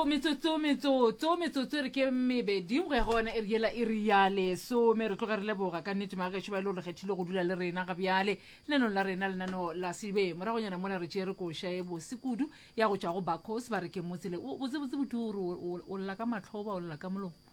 metsotso metsotso metsotso metsotso e re ke mebedi go ya go ona e re yela e re ya lesome re tloge re leboga ka nnete maagešo ba e le gore kgethile go dula le rena ga bjale lenanong la rena lenano la sebe moragonyana mona re tšere koša e bose kudu ya go tšwa go bacos ba re ke motsele botsebotse botu o lla ka matlhoba o lla ka molomo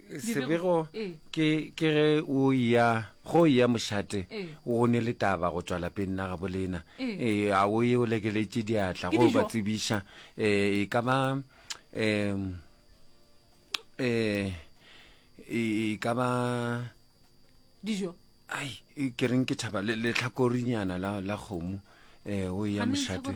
sebego ke ke ge o ya go ya mošate o ne le taba go tswala peng na gabolena eh a o ye o lekeletše diatla go ba tsebiša eh e ka ba um eh e ka ba dijo ai e, ke reng ke thaba le- letlhakorinyana la la kgomo um o ya mošate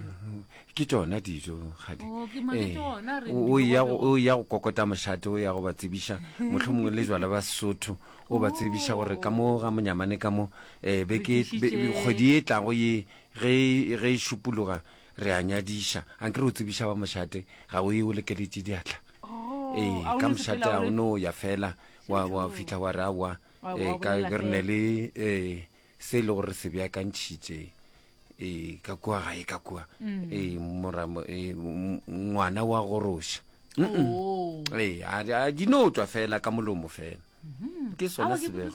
Mm-hmm. ke tšona dijo gadi Oh, ke mane ke ona re o di ya go- bogobe. o ya go kokota mošate o ya go ba tsebiša motlho mongwe le jala ba sesotho o ba tsebiša gore ka mo ga monyamane ka mo um beke be- be- tlišitše- kgwedi e tlago ye ge e- ge e šupologa re a nyadiša a nke re o tsebiša ba mošate ga o ye o lekeletše diatla Oh, ee a o ka no mošate sepela o ga o re- no ya fela wa wa fitlha wa re awa eh, ka re ne le eh, se e le gore re se beakantšhitše eh, ka kua gae ka kua mm. eh, moramo eh, ngwana wa goroša oh. eh, a di no tswa fela ka molomo fela mm-hmm. ke sona sebego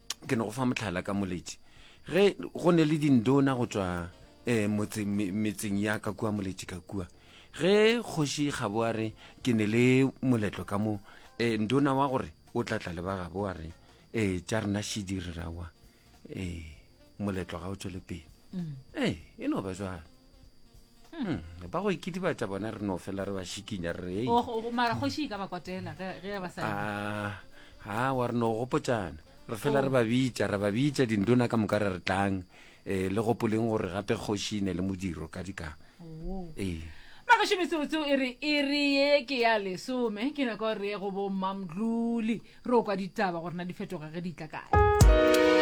ke no go fa motlhala ka moletši ge go ne le dindona go tswa um metseng ya ka kua moletši ka kua ge kgoši gabo a re ke ne le moletlo ka mo um ndona wa gore o tla tla le ba gabo a re um tša rena šidi re rawa um moletlo ga o tswele pele mm. ee e no ba jalo Hmm, ba go ikidibatsa bona re no fela re ba šikinya re oh, oh, oh, mara kgoši e ka ba kwatela ge ba sa ah, ha wa re no gopotsana re fela re ba bitsa re ba bitsa dindona ka moka re re tlang um le gopoleng gore gape kgoši ne le modiro ka dika ee magašo metsebotse e re e re ye ke ya lesome ke nako re ye go bommamdlole re o kwa ditaba gorena di fetoga ge di tla kae